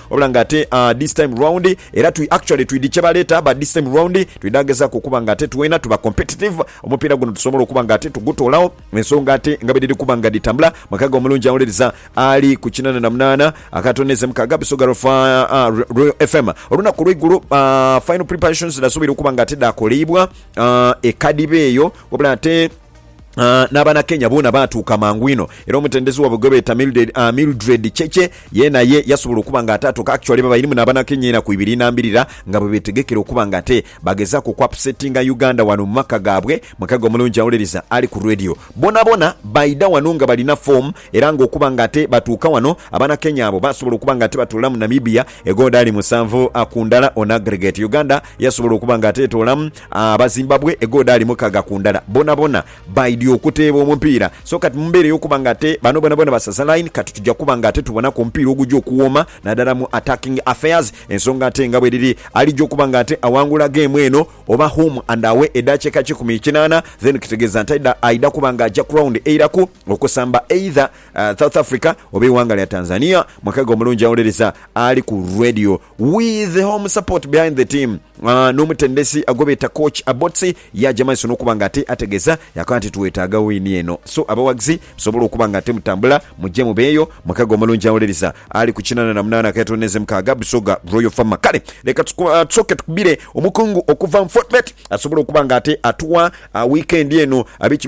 Wabula nga ate this time round era twi actually twidi kyebaleeta but this time round twidha gezaku okuba nga ate twena tuba competitive omupiira guno tusobole okuba nga ate tugutoolawo ensonga ate nga bwedhiri kuba nga dhitambula makaga omulungi awuliriza ali ku kinana na munaana akatono n'eze mukaaga bisoga lwa Royal FM olunaku olweigulo final preparations dhasuubira okuba nga ate dhaakoleibwa ekadiba eyo wabula ate N'Abanakenya boona baatuuka mangu inho, era omutendesi waibwe gwe beeta Mildred Cheche yeena ye yasobola okuba nga ate atuuka. Actually babairimu n'Abanakenya ena ku ibiri nambirira nga bwe beetegekera okuba nga ate bagezaaku okuapsetinga Uganda wano mu maka gaabwe. Mukago omulungi awuliriza ali ku Radio. Boonaboona baidha wano nga balina foomu era ng'okuba nga ate batuuka wano, Abanakenya abo baasobola okuba nga ate batuula mu Namibia egoodaali musanvu ku ndala on aggregate. Uganda yasobola okuba nga ate etoolamu. Abazimbabwe egodaali mukaga ku ndala bonabona baidhi okuteeba omupiira so kati mu mbeera ey'okuba nga ate bano bonabona basaza line kati tuja kuba nga ate tubonaku omupiira oguja okuwooma nadala mu attacking affairs ensonga ate nga bweriri alija okuba nga ate awangula geemu eno oba home and away edaakiika kikumi kinaana then kitegeeza nti aidha kuba nga aja ku round eiraku okusamba either South Africa oba eiwanga lya Tanzania. Mukaga omulungi awolereza ali ku Radio. We the home support behind the team N'omutendesi gwebeeta Coach Abotsi yaaja maiso n'okuba nga ate ategeza yaakoba nti twetaaga wini eno so abawagizi musobole okuba nga ate mutambula muje mubeeyo mukago omulungi awuliriza ali ku kinana na munaana ak'etonde ze mukaaga Busoga Royal Farmer Kale leka tusooke tukubire omukungu okuva mu Fortebet asobole okuba nga ate atuwa wiikendi eno biki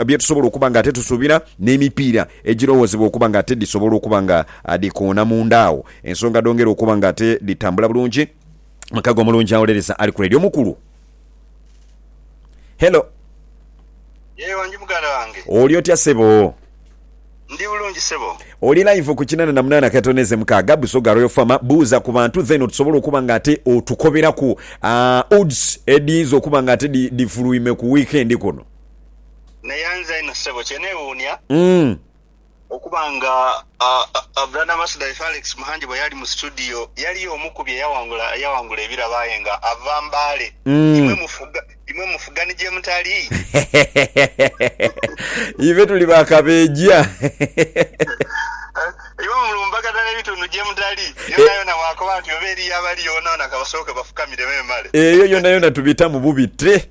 byetusobola okuba nga ate tusuubira n'emipiira egirowoozebwa okuba nga ate dhisobola okuba nga dhikoona munda awo. Ensonga dhongera okuba nga ate dhitambula bulungi. Mukago omulungi awolereza ali ku Radio mukulu. Hello. Yee wangi muganda wange. Oli otya sebo? Ndi bulungi sebo. Oli live ku kinana na munana katono eze mukaaga, Busoga Royal Farmer. Buuza ku bantu then otusobole okuba nga ate otukoberaku odds edhiyinza okuba nga ate dhifuluime ku weekend kuno. Neyanza inho sebo kyenewuunia. Okuba nga Brother Masuda ife Alex Muhangi bwe yali mu situdiyo yali omu ku bye yaghangula ebirabo aye nga ava Mbale. Imwe mufuga ni gye mutali? Ife tuli ba kabeeja. Imwe mulumbaganha n'ebitundu gye mutali? Yonayona bw'akoba nti oba eriyo abaliyo boonaboona ka basooke bafukamire memale. Eyo yonayona tubitamu bubite.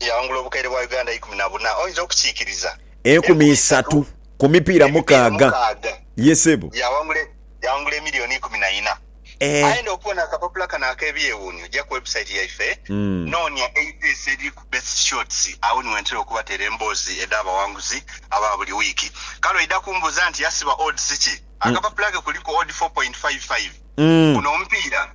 yaghangula obukaire bwa Uganda eikumi na buna, oyinza okukiikiriza? Enkumi isatu ku mipiira mukaaga. Ye sebo. Yaghangula emiliyoni ikumi na ina. Aye enda okubona akapapula kano ak'ebyewuunyo, ja ku website yaife, noonia eipeesa eliri ku Best Shots, agho ni wentera okubateera emboozi edh'abawanguzi aba buli wiiki. Kale oidha kumbuuza nti, Yasiba odds ki? Akapapula ke kuliku odd four point five five. Guno omupiira.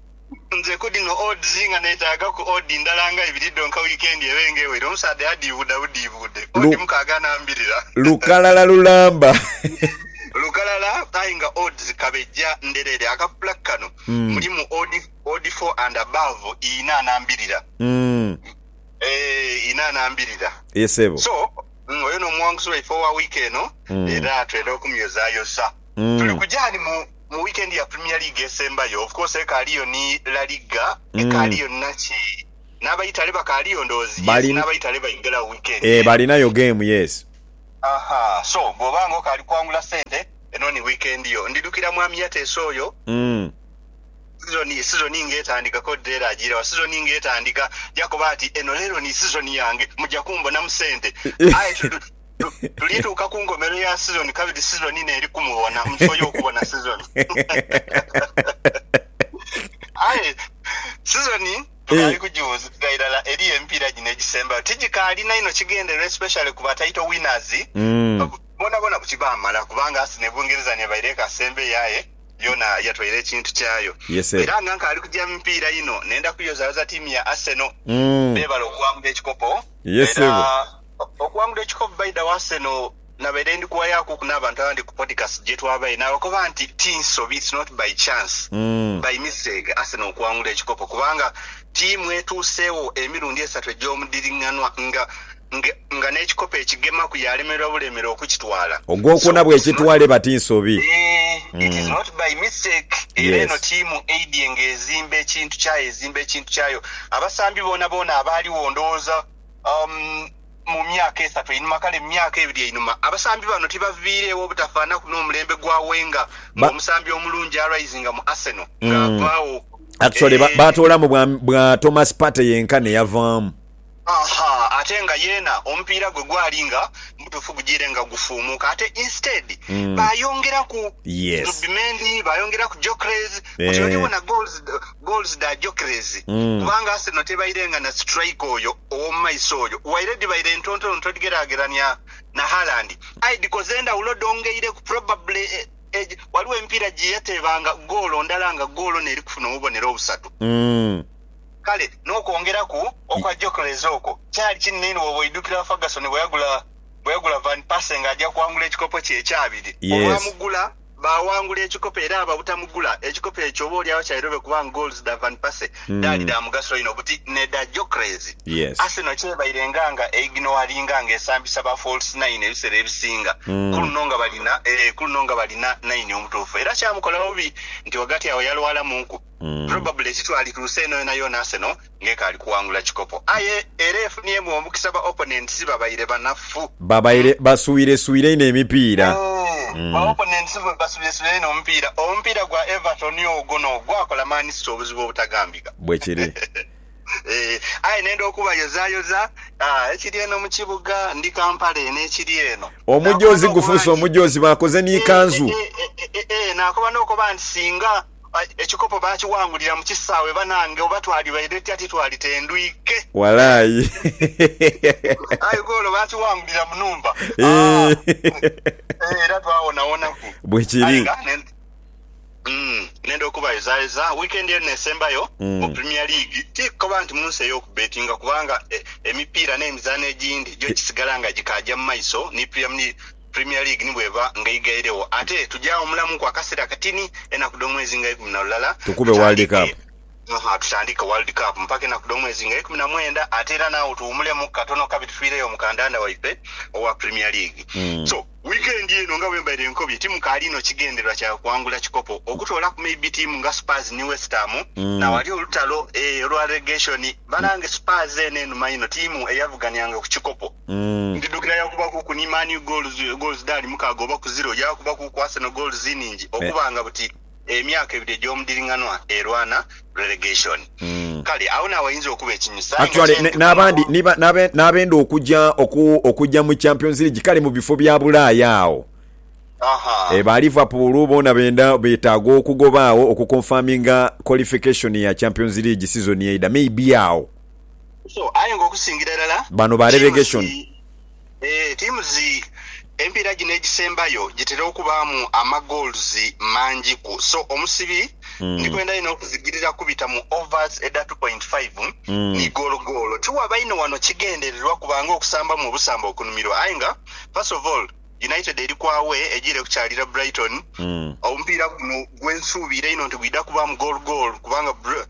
Nze ku dhino odds nga neetaagaku odd ndala nga ibiri dhonka wiikendi ebe nga ewere, omusaadha yadhiibuuda budhiibuude odd mukaaga n'ambirira. Lukalala lulamba. Lukalala aye nga odds kabejja ndhereere. Akapapula kano mulimu odd four and above inha n'ambirira. Eeh inha n'ambirira. So oyo n'omuwanguzi waife owa wiiki eno era twenda okumyozayoza. Tuli kuja ghani mu mu weekend ya Premier League esembayo, of course ekaaliyo ni La Liga, ekaaliyo ni naki? N'abaitale bakaaliyo ndowooza? Yes, n'abaitale baidhiragho weekend eno. Balinayo game, yes. Aha, so bw'oba nga okaali kwangula sente, eno ni weekend yo. Ndidhukira Mwami Yateesa oyo, sizoni, sizoni nga etandika, Code era ajiira wa, sizoni nga etandika, yakoba ati, Eno leero ni sizoni yange, muja kumbonamu sente. Aye tu, Tulituuka ku nkomerero ya sizoni kabiri sizoni ino eri kumubona mu kifo y'okubona sizoni. Aye sizoni tukaali kugiwuuzikira irala eriyo emipiira gino egisembayo tigikaalina inho kigendererwa especially ku ba title winners boonabona buti baamala kubanga Arsenal e Bungereza n'ebaire ekasembeyo aye yoona yatwaire ekintu kyayo. Era nga nkaali kugya mu mipiira ino nenda kuyozayoza tiimu ya Arsenal beebale okuwangula ekikopo era Okuwangula ekikopo Baida wa Arsenal nabaire ndi kuwayakuku n'abantu abandi ku podcast gye twabaire naabakoba nti ti nsobi, it's not by chance, by mistake Arsenal okuwangula ekikopo kubanga ttiimu etuuseegho emirundi esatu egy'omudhiring'anwa nga nga n'ekikopo ekigemaku yaalemererwa bulemere okukitwala. Ogwokuna bw'ekitwala eba ti nsobi. Eeh, it is not by mistake. Era eno ttiimu eidhye ng'ezimba ekintu kyayo, ezimba ekintu kyayo. Abasambi boonaboona abaaligho ndowooza. Mu myaka esatu einhuma, kale mu myaka ebiri einhuma, abasambi bano tibaviireegho obutafaanaku n'omulembe gwa Wenger nga omusambi omulungi arisinga mu Arsenal ng'avaagho. Actually baatoolamu bwa Thomas Partey yenka n'eyavaamu. Aha, ate nga yeena omupiira gwe gwali nga mutuufu gujiire nga gufuumuuka ate instead baayongeraku Zubimendi, baayongeraku Gyökeres, kati oly'obona goals. goals dha Gyökeres kubanga Arsenal tebairenga na striker oyo ow'omu maiso oyo waire dhibaire ntontono todigeragerania na Haaland aye dhikoze endhawulo dhongeireku probably egi waliwo emipiira gye yateebanga goolo ndala nga goolo n'eri kufuna obubonero obusatu. Kale n'okwongeraku okwa Gyökeres okwo kyali kinene inho bw'oba oidhukira Ferguson bwe yagula bwe yagula Van Persie ng'aja kwangula ekikopo kye ekyabiri olwamugula. Baawangula ekikopo era ababutamugula ekikopo ekyo oba olyagho kyairobe kubanga goals dha Van Persie dhaali dha mugaso inho buti n'edha Gyökeres. Arsenal kyebairenga nga eignowalinga nga esambisa ba false nine ebisera ebisinga, ku luno nga balina, ee, ku luno nga balina naini omutuufu era kyamukola bubi nti ghagati agho yalwalamuuku. Probably ekitwali ku nsi eno yonayona Arsenal nga ekaali kuwangula kikopo aye era efuniemu omukisa ba opponents babaire banafu. Babaire baswireswire inho emipiira. Ba opponents baswireswire inho omupiira. Omupiira gwa Everton ogwo no gwakola Man City obuzibu obutagambika. Bwekiri. Eeh aye nenda okubayozayoza ekiri eno mu kibuga. Ndi Kampala eno ekiri eno. Omujoozi gufuuse omujoozi bakoze ni kanzu. Eeh eeh nakoba nokoba nti singa. ekikopo baakiwangulira mu kisaawe banange oba twalibaire tutya titwali tendwike Walai. aye goolo baakiwangulira mu nhumba Eeh. aah era twawonawonaku aye Bwekiri. nga ne mm nenda okubayozayoza weekend eno esembayo mu Mm. Premier League ti kukoba nti mu nsi ey'okubbetinga kubanga e, emipiira n'emizaano egindi gyo gisigala nga gikaaja mu maiso ni Preamni, Premier League ni bw'eba nga eigairegho. Ate tuja wumulamuku akaseera katini, enaku dh'omwezi nga ikumi na lulala, Tukube World Cup. Tutandike, tutandike World Cup mpaka enaku dh'omwezi nga ikumi na mwenda, ate era n'agho tuwumulemu katono kabe tufiireyo mu kandanda waife owa Premier League. So, wiikendi eno nga bwe mbaire nkobye, timu kaali inho kigendererwa kyayo kuwangula kikopo, okutoolaku maybe tiimu nga Spurs ni West Ham, n'awali olutalo, eeh, olwa relegation. Banange Spurs eno enuma inho, tiimu eyavughaniranga ku kikopo. Ndidhuukira yaakubakuku ni Man U goals dhaali mukaaga oba ku ziro, yaakubaku ku Arsenal goals inhingi okubanga buti emyaka ebiri egy'omudhiring'anwa erwana relegation. Kale agho n'awainza okuba ekinyusi aye nga kye ndi kukomawo. N'abenda okuja okuja mu Champions League kale mu bifo bya Bulaaya agho ba Liverpool boona benda beetaaga okugoba agho okuconfirminga qualification ya Champions League sizoni eidha. Maybe agho. aye nga okusingira irala Bano ba relegation. Teams emipiira gino egisembayo gitera okubaamu ama goals mangi ku so omusibi ndikwenda inho okuzigirira kubita mu overs edha two point five ni goolo goolo. Tiwaba inho wano kigendererwa kuba nga okusambamu obusamba okunumirwa aye nga first of all United eri ku away ejiire kukyalira Brighton. Omupiira guno gwensuubiira inho nti gwidha kubaamu goolo goolo kubanga.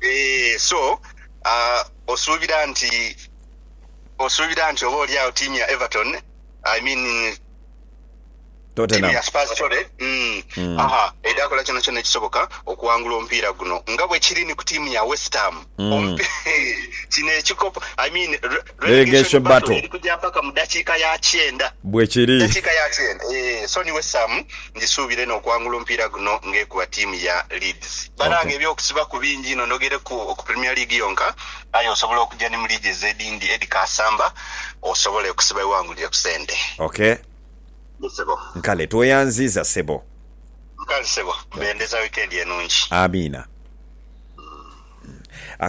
Eeh, so, ah, osuubira nti, osuubira nti oba oli agho tiimu ya Everton, I mean, tiimu Tottenham. ya Spurs, sorry, mm, Mm. aha, eidha kola kyonakyona ekisoboka okuwangula omupiira guno nga bwe kiri ni ku tiimu ya West Ham? Mm. Omupi, kino ekikopo, I mean, re, Relegation Battle eri kugya mpaka mu dakiika ya kyenda. Bwe kiri. Dakiika ya kyenda, ee. Sonny Wesam, Ngisuubira eno okuwangula omupiira guno ng'ekuba ttiimu ya Leeds. Banange eby'okusibaku bingi inho ndogereku ku Premier League yonka aye osobola okugya ni mu liigi ezo edhindi Eddie Kaasamba osobole okusiba wewangulire ku sente. Ok. Yes sebo. Nkale tweyanziiza sebo. Nkale sebo. Bendeza wikendi enungi. Amiina.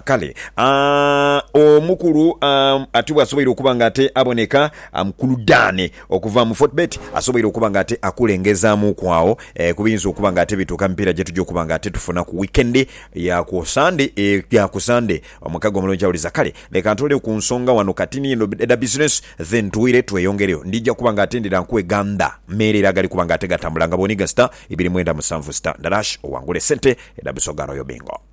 Kale, a, omukulu a, ati bw'asoboire okuba nga ate aboneka, a, Mukulu Dane okuva mu Fortbet, asoboire okuba nga ate akulengezaamuuku agho e, ku biyinza okuba nga ate bituuka mu mipiira gye tugya okuba nga ate tufuna ku wiikendi ya ku Sande, e, ya ku Sande. Omukago omulungi awuliza. Kale, leka ntooleyo ku nsonga ghano kati ni eno edha bizinesi, then twire tweyongereyo. Ndija kuba nga ate ndidha nkuwe ganda meerere agali kuba nga ate gatambula nga bw'oniga sita ibiri mwenda musanvu sita ndarash owangule sente edha Busoga Royal Bingo.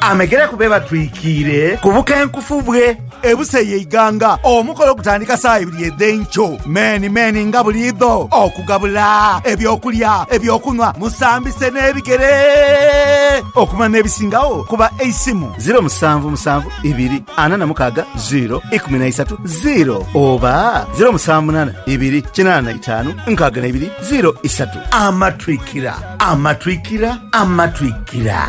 Amegere ku be batwikiire ku bukenkufu bwe. Ebusa ey'eighanga. Omukolo gutandika saa ibiri edh'enkyo meni meni nga buliidho okugabula eby'okulya, eby'okunhwa, musambise n'ebigere okumanya n'ebisingagho ku ba Eisimu, ziro musanvu musanvu ibiri ana na mukaaga ziro ikumi na isatu ziro oba ziro musanvu munaana ibiri kinaana na itaanu nkaaga na ibiri ziro isatu. Amatwikira, amatwikira, amatwikira.